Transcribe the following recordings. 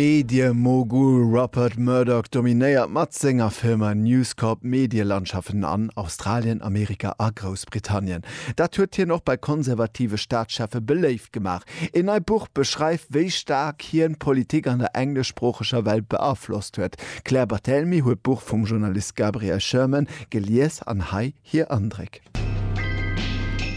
D'Medie-Mogul Rupert Murdoch dominéiert mat senger Firma News Corp d'Medielandschaften an Australien, Amerika a Groussbritannien. Dat huet hien och bei konservative Staatscheffe beléift gemaach. Een neit Buch beschreift, wéi staark hien d'Politik an der engleschsproocheger Welt beaflosst huet. D'Claire Barthelemy huet d'Buch vum Journalist Gabriel Sherman gelies an hei. hir Andréck.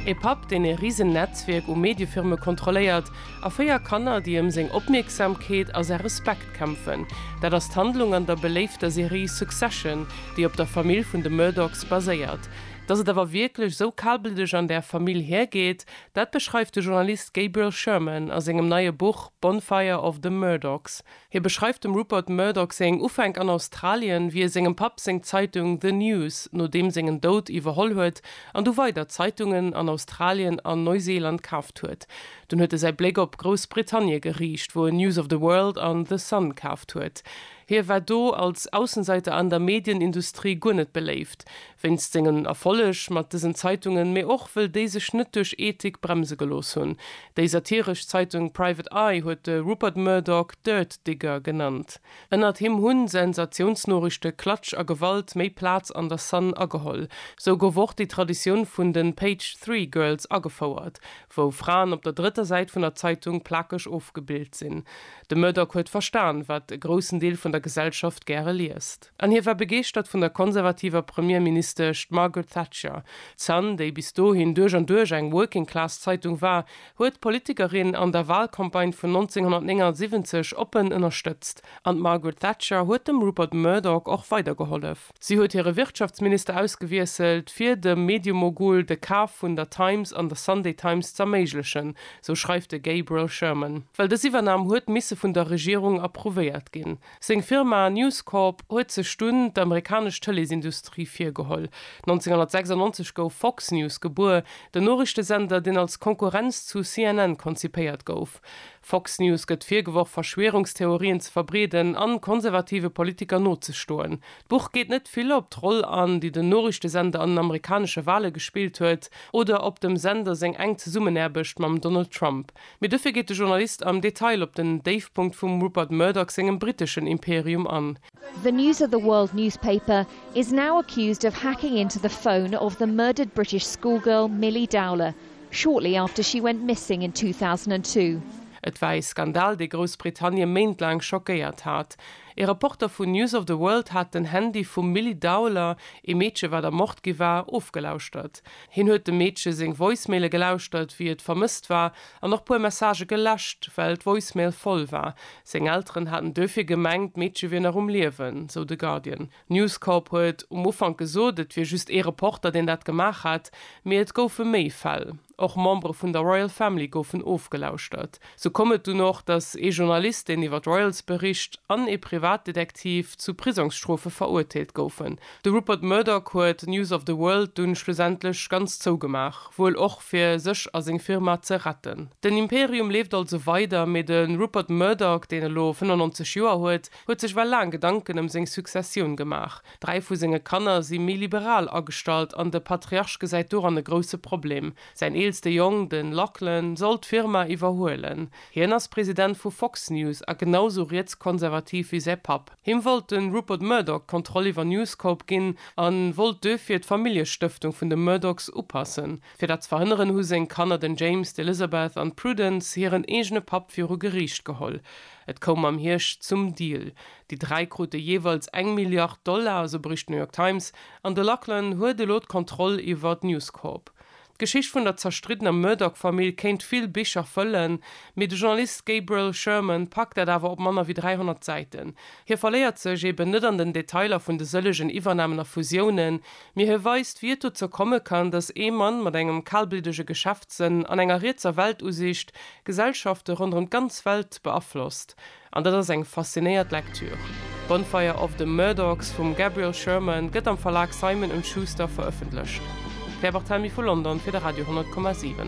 E Papp, deen e risen Netzwierk u Mediefirme kontrolléiert, a véier Kanner, déi ëm seng Opmierksamkeet a säi Respekt kämpfen, dat ass d'Handlung an der beléifter Serie Succession, déi op der Famill vun de Murdochs baséiert. Datt et awer wierklech esou kalblëdeg an där Famill hiergeet, dat beschreift de Journalist Gabriel Sherman a sengem neie Buch Bonfire of the Murdochs, Hie beschreift dem Rupert Murdoch seng Ufänk an Australien, wéi e sengem Papp seng Zeitung The News no deem sengen Doud iwwerholl huet an du weider Zeitungen an Australien an Neuseeland kaaft huet. Dunn huet e säi Bléck op Groussbritannie geriicht, wou en News of the World an The Sun kaaft huet. Hie war do als Aussenseiter an der Medienindustrie guer net beléift, Wéinst sengen Erfolleg mat dësen Zeitungen, mee och wëll déi sech net duerch Ethik bremse gelooss hunn. Déi satiresch Zeitung Private Eye huet de Rupert Murdoch Dirt Digger genannt. Ënnert him hunn Sensatiounsnoriichte, Klatsch a Gewalt méi Plaz an der Sun ageholl. Sou gouf och déi Traditioun vun den Page Three Girls agefouert, wou Fraen op der drëtter Säit vun der Zeitung plakeg ofgebild sinn. De Murdoch huet verstan, wat e groussen Deel vun der Gesellschaft gäre liest. An hie war begeeschtert vun der konservativer Premierministesch Margaret Thatcher. D'Sun, déi bis dohin duerch an duerch eng Working-Class-Zeitung war, huet d'Politikerin an der Walcampagne vun 1979 oppen ënnerstëtzt. An d'Margaret Thatcher huet dem Rupert Murdoch och weidergehollef. Si huet hire Wirtschaftsminister ausgewiesselt, fir dem Mediemogul de Kaf vun der Times an der Sunday Times z'erméiglechen, sou schreift de Gabriel Sherman. Well dës Iwwernam huet misse vun der Regierung approuvéiert ginn. Seng Firma News Corp huet sech dunn d'amerikanesch Tëleesindustrie virgeholl. 1996 gouf Fox News gebuer, den Noriichtesender, deen als Konkurrenz zu CNN konzipéiert gouf. Fox News gëtt virgeworf, Verschwierungstheorien ze verbreeden a konservative Politiker nozestoen. D'Buch geet net vill op d'Roll an, déi den Noriichtesender an den amerikanesche Wale gespillt huet oder op dem Sender seng enk Zesummenaarbecht mam Donald Trump. Mee dofir geet de Journalist am Detail op den Déifpunkt vum Rupert Murdoch sengem briteschen Imperium an. The News of the World newspaper is now accused of hacking into the phone of the murdered British schoolgirl Milly Dowler shortly after she went missing in 2002. Et war ee Skandal, dee Groussbritannie méintlaang schockéiert hat. Ee Reporter vun News of the World hat den Handy vum Milly Dowler, ee Meedche wat ermort gi war, ofgelauschtert. Hien huet dem Meedche seng Voicemaile gelauschtert, wéi et vermësst war, an och puer Messagë geläscht, well d'Voicemail voll war. Seng Elteren haten duerfir gemengt, d'Meedche wier nach um Liewen, sou de Guardian. News Corp huet um Ufank gesot, et wier just ee Reporter, deen dat gemaach hat, mee et goufe méi Fäll. Och Membere vun der Royal Family goufen ofgelauschtert. Sou koum et dunn och, datt ee Journalist, deen iwwer d'Royals bericht, an ee Privatdetektiv zu Prisongsstrofe verurteelt goufen. De Rupert Murdoch huet News of the World dunn schlussendlech ganz zougemaach, wuel och fir sech a seng Firma ze retten. Den Imperium leeft also weider, mee de Rupert Murdoch, deen elo 95 Joer huet, huet sech well laang Gedanken ëm seng Successioun gemaach. Dräi vu senge Kanner si méi liberal agestallt an de Patriarch gesäit doran e grousse Problem. Säin eelste Jong, de Lachlan, soll d'Firma iwwerhuelen. Hien ass President vu Fox News a genau sou rietskonservativ wéi säi Papp. Him wollt de Rupert Murdoch d'Kontroll iwwer News Corp ginn a wollt duerfir d'Familljestëftung vun de Murdochs upassen. Fir dat ze verhënneren, hu seng Kanner, den James, d'Elizabeth an d'Prudence, hiren eegene Papp viru Geriicht geholl. Et koum am Hierscht zum Deal. Déi dräi krute jeeweils eng Milliard Dollar, esou bericht d'New York Times. An de Lachlan huet elo d'Kontroll iwwer d'News Corp. D'Geschicht vun der zerstriddener Murdoch-Famill kéint vill Bicher fëllen, mee de Journalist Gabriel Sherman packt dat awer op manner wéi 300 Säiten. Hie verléiert sech eben net an den Detailer vun de sëllegen Iwwernamen a Fusiounen, mee hie weist, wéi et dozou komme kann, datt ee Mann mat engem kalbliddege Geschäftssënn an enger rietser Weltusiicht Gesellschafte ronderëm d'ganz Welt beaflosst. An dat ass eng faszinéiert Lektür. Bonfire of the Murdochs vum Gabriel Sherman gëtt am Verlag Simon und Schuster verëffentlecht. D'Claire Barthelmy vu London fir de Radio 10,7.